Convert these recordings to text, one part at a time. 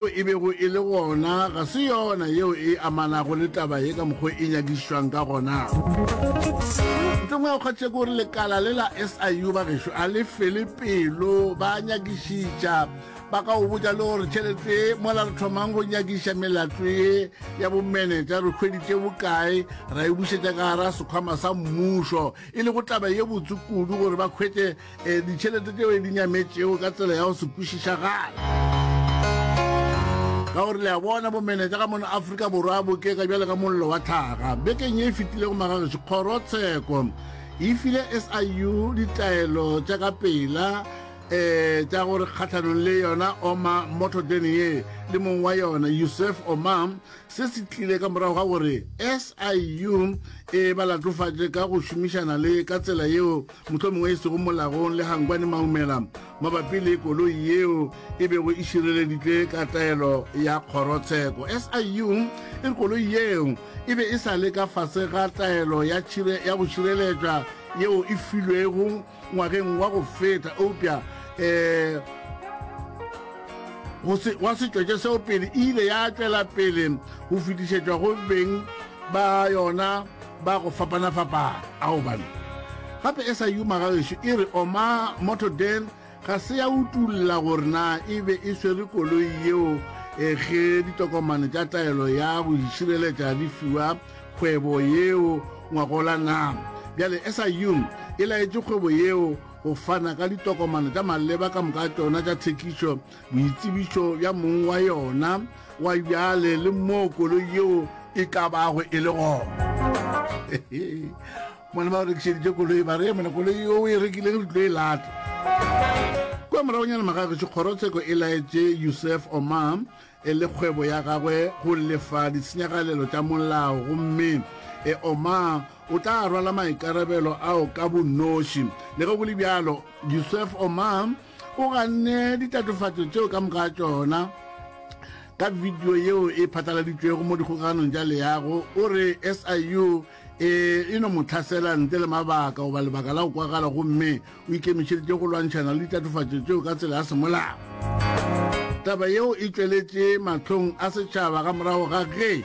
Yeo e bego e le gona ga se yona yeo e amanago le taba ye ka mokgwa e nyadišwang ka gona. Ntlong ya go kgatšeko gore lekala le la SIU bagešo a le fele pelo ba nyakišitša ba ka o botša le gore tšhelete mola re thomang go nyakiša melato ye ya bomenetša re hweditše bokae ra e bušetša ka gara sekhwama sa mmušo e le go taba ye botse kudu gore ba hwetše e ditšhelete tšeo e di nyametšego ka tsela ya go se kwešišagala ka gore le a bona bomenetša ka mono aforika borwa a bokeka bjale ka mollo wa tlhaga bekeng ye e fetilego magagešo kgorotsheko e file siu ditaelo tša ka pela um tša gore kgatlhanong le yona oma motorden ye le mong wa yona yusef omar se se tlile ka morago ga gore siu e ba latofatše ka go šomišana le ka tsela yeo mohlomongwe e sego molagong le gankwane maumela mabapi le koloi yeo e bego e šireleditšwe ka taelo ya kgorotsheko siu e re koloi yeo e be e sa le ka fase ga taelo ya go šireletšwa yeo e filwego ngwageng wa go feta eupša um wa setšwetše seo pele e ile ya tšwela pele go fetišetšwa go beng ba yona ba go fapana-fapana a gobane gape e sa yuma ga gešu e re oma motor den ga se ya utulla gore na e be e swere koloi yeo e ge ditokomane tša taelo ya go itšhireletša di fiwa kgwebo yeo ngwagola na bjale e sa yum e laetše kgwebo yeo go fana ka ditokomane tša maleba ka moka tšona tša thekišo boitsebišo bja mong wa yona wa bjale le moo koloi yeo e ka bago e le gona mone ba rekišeditše koloi ba re e mone koloi yeo e rekileng re tlo e lata kwa moragonyana magagešo kgorotsheko e laetše yusef omar e le kgwebo ya gagwe go lefa ditshenyagalelo tša molao gomme e omar o tla rwala maikarabelo ao ka bonoši le ge go le bjalo yusef omar o ganne ditatofatso tšeo ka moka tšona ka vidio yeo e phatlaladitšwego mo dikgokaganong tša leago o re siu e e no mo tlhasela ntle le mabaka goba lebaka la go kwagala gomme o ikemišeditše go lwantšhana le ditatofatšo tšeo ka tsela ya semolao taba yeo e tšweletše matlhong a setšhaba ga morago ga ge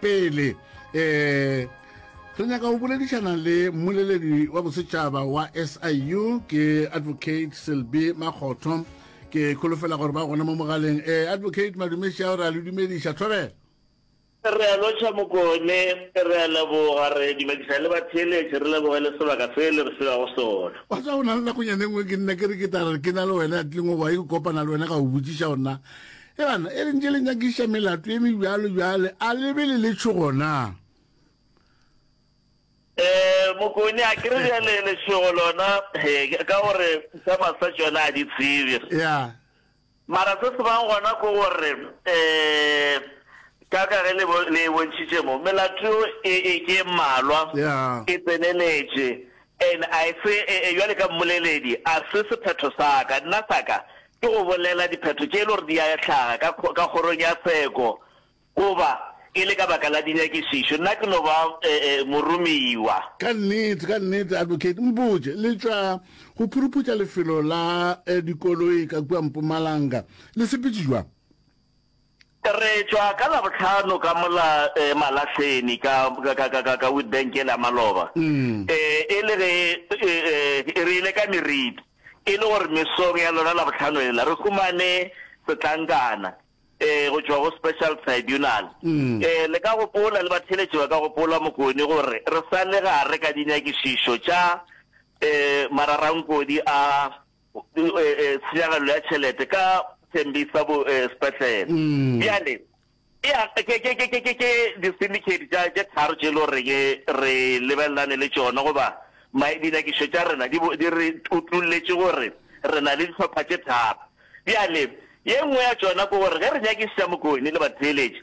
pele um re nyaka go boledišana le mmoleledi wa bosetšhaba wa siu ke advocate selby makgotho ke kholofela gore ba gona mo mogaleng um eh, advocate madumeši ao re a le dumediša thobela re a lotšha mokone re a leboga re dumedisa le batheeletše re leboge le sebaka se le re filago sona wa tsa go na le nakonyane nngwe ke nna ke re ke tara ke na le wena a tlileng go wa e kopana le wena ka go botšiša gona Eana, e lentše le nyakiša melato e mebjalo bjale, a le be le letšho gona? Ee, Mokone, a ke re bjale lešego lona, he, ka gore tša massage yona a di tsebe. Ya. Mara se se bang gona ke gore, ee, ka ka ge le bo, le e bontšhitše mo, melato eo e, e ke e mmalwa, Ya. e tseneletše, NICAA bjale ka mmoleledi, a se sephetho sa ka. Nna sa ka ke go bolela diphetho tše e le gore di a hlaga ka, ka kgorong ya tsheko goba e le ka baka la dinyakišišo. Nna ke no ba moromiwa. Ka nnete, ka nnete, Advocate. Mpotše, le tšwa go phuruputša lefelo la dikoloi ka kua Mpumalanga, le sepetše bjang? Re tšwa ka Labohlano ka mola Malahleni ka, ka, ka, ka, ka, ka Witbank yela ya maloba, e le ge re ile ka meriti, e le gore mesong ya lona Labohlano yela re humane setlankana go tšwa go Special Tribunal. Le ka gopola, le batheeletši ba ka gopola, Mokoni, gore re sa le gare ka dinyakišišo tša mararankodi a, tshenyagelo ya tšhelete ka thembi sa bo sepetlele mm. bjale ke di-syndicate tše tharo tše e le goreng re lebelelane le tšona goba dinyakišo tša rena di re utlolletše gore re na le ditlhopha tše tharo bjale ye nngwe ya tšona ke gore ge re nyakišiša mokone le batheeletši